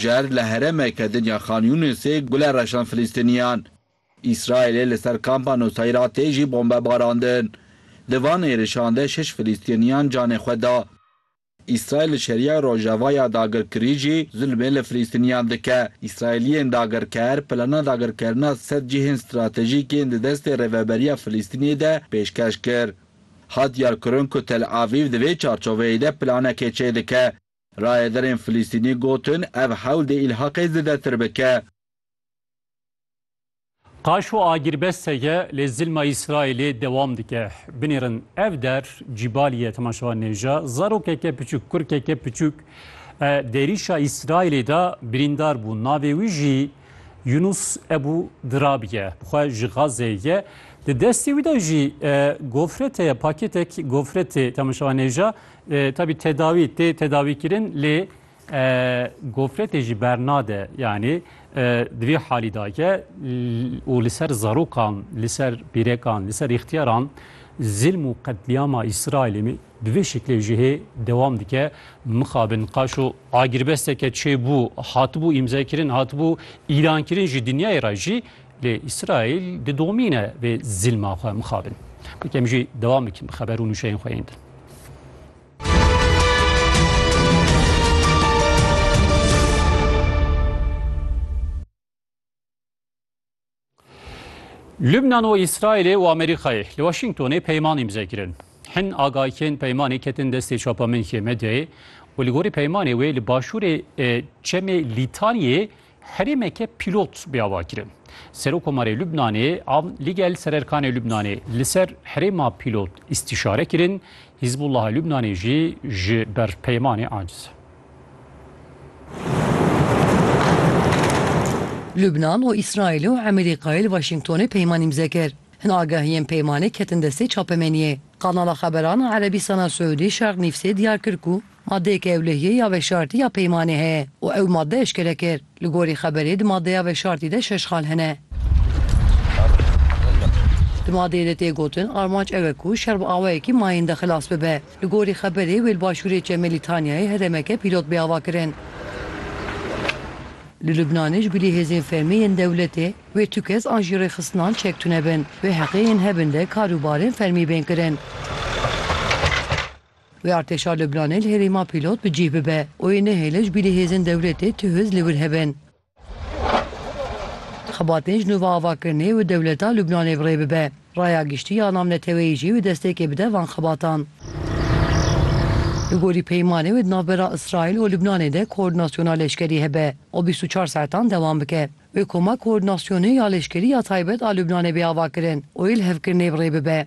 Şer li herêmeke din ya Khan Yûnisê gule reşand Filîstîniyan. Îsraîlê li ser kampa Nuseyra tê jî bombe barandin. Di van êrişan de şeş Filîstîniyan canê xwe da. Îsraîl li Şeriya Rojava ya dagirkirî jî zilmê li Filîstîniyan dike. Îsraîliyên dagirker plana dagirkerina sed cihên stratejîk yên di destê Rêveberiya Filîstînê de pêşkeş kir. Hat diyarkirin ku Tel Avîv di vê çarçoveyê de planekê çêdike. Rayedarên Filistînî gotin, ev hewl dê îlhaqê zêdetir bike. Qaşo agirbest heye lê zilma Îsraîlê dewam dike. Binêrin ev der Cîbalî ye temaşevan nêja zarokeke piçûk, kurkeke piçûk di êrîşa Îsraîlê de birîndar bû navê wî jî Yunus Ebû Dirab ye. Xwe ji Gazeyê ye. Di destê wî de jî gofret heye, paketek gofretê temaşevan nêja Tabî tedawî tê tedawîkirin lê gofretê jî bernade yanî di vî halî da ke û li ser zarokan li ser pîrekan li ser îxtiyaran zilm û qetlîama îsraîlê min di vê şeklê ji hê dewam dike mixabin qaşo agirbesteke çêbû hatibû îmzekirin hatibû îlankirin ji dinyayê re jî lê îsraîl didomîne vê zilma xwe mixabin bikem jî dewam bikin bi xeber û nûşeyên xwe yên din Lübnan û Îsraîlê û Amerîkayê li Washingtonê peyman îmze kirin. Hin agahiyên peymanê ketin destê çapemenîkê medyayê û li gorî peymanê wê li başûrê çemê Lîtaniyê herêmeke pîlot bê avakirin. Serokomarê Lubnanê a ligel sererkanê Lubnanê li ser herêma pîlot îstîşare kirin, Hîzbullaha Lubnanê jî ji ber peymanê aciz e. Lubnan û Îsraîlê û Emerîkayê li Waşîngtonê peyman îmze kir. Hin agahiyên peymanê ketin destê çapemeniyê. Kanala xeberan a Erebîstana Siûdî Şerq Nîvsê diyar kir ku madeyeke ewlehiyê ya veşartî ya peymanê heye û ew made eşkere kir. Li gorî xeberê di madeya veşartî de şeş xal hene. Di madeyê de tê gotin armanc ew e ku şer bi awayekî mayinde xilas bibe. Li gorî xeberê wê li başûrê Çemê Lîtanyayê herêmeke pîlot bê avakirin. Li Lubnanê ji bilî hêzên fermî yên dewletê Wê tu kes an jî rêxistinan çek tune bin. Wê heqê yên hebin de kar û barên fermî bên kirin. Wê artêşa Lubnanê li herêma pîlot bi cîh bibe û wê nehêle ji bîrî hêzên dewletê tu hûz li wir hebin. Xebatên ji nû ve ava kirinê wê dewleta Lubnanê bi rê bibe. Raya giştî ya namneteweyî jî wê destpêkê bide van xebatan. Li gorî peymanê wê di navbera Îsraîl û Lubnanê de koordînasyona leşkerî hebe û bîst û çar saetan dewam bike. Bi koma koordinasyonê ya leşkerî ya taybet a Lubnanê bê avakirin û ê li hevkirinê bi rê bibe.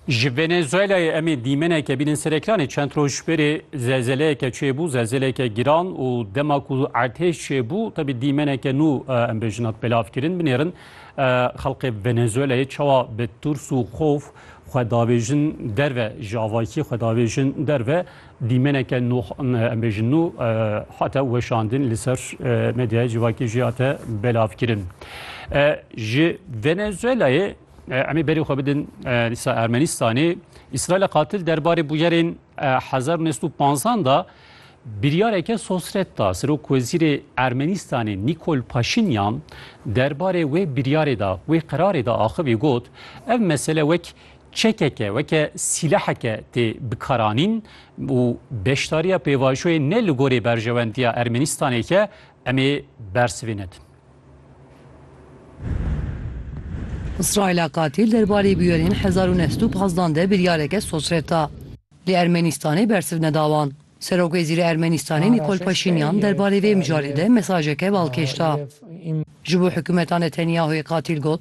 Ji Venezuelayê em ê dîmeneke bînin ser ekranê. Çend roj berê zelzeleyeke çêbû, zelzeleke giran û dema ku ertêş çêbû tevî dîmeneke nû em bêjin hat belavkirin. Binêrin xelkê Venezuelayê çawa bi tirs û xof xwe davêjin derve, ji avakiyê xwe davêjin derve. Dîmeneke nû em bêjin nû hate weşandin li ser medyaya civakê jî hate belavkirin. Ji Venezuelayê em ê berê xwe bidin dîsa Ermenistanê. İsraîla qatil derbarê bûyerên 1950 da biryareke sosret da. Serok Wezîrê Ermenistanê Nikol Paşinyan derbarê wê biryarê da, wê qerarê da axivî got, ev mesele wek Çekeke weke sîleheke tê bikaranîn û beşdariya pêvajoyê ne li gorî berjewendiya Ermenistanê ye em ê bersiv ê nedin. Îsraîla qatîl derbarê bûyerên hezar û neh sed û pazdeh de biryareke sosret da. Lê Ermenistanê bersiv neda wan. Serokwezîrê Ermenistanê Nîkol Paşînyan derbarê vê mijarê de mesajeke balkêş da. Ji bo hikûmeta Netenyahoyê qatîl got,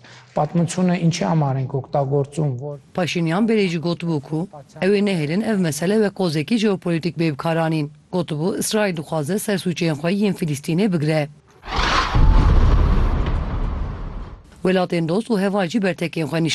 Paşînyan berê jî gotibû ku ew ê nehêlin ev mesele wek qozekî jeopolîtîk bê bikaranîn. Gotibû Îsraîl dixwaze sersûçeyên xwe yên Filîstînê bigire. Welatên dost û heval jî bertekên xwe nîşan dan.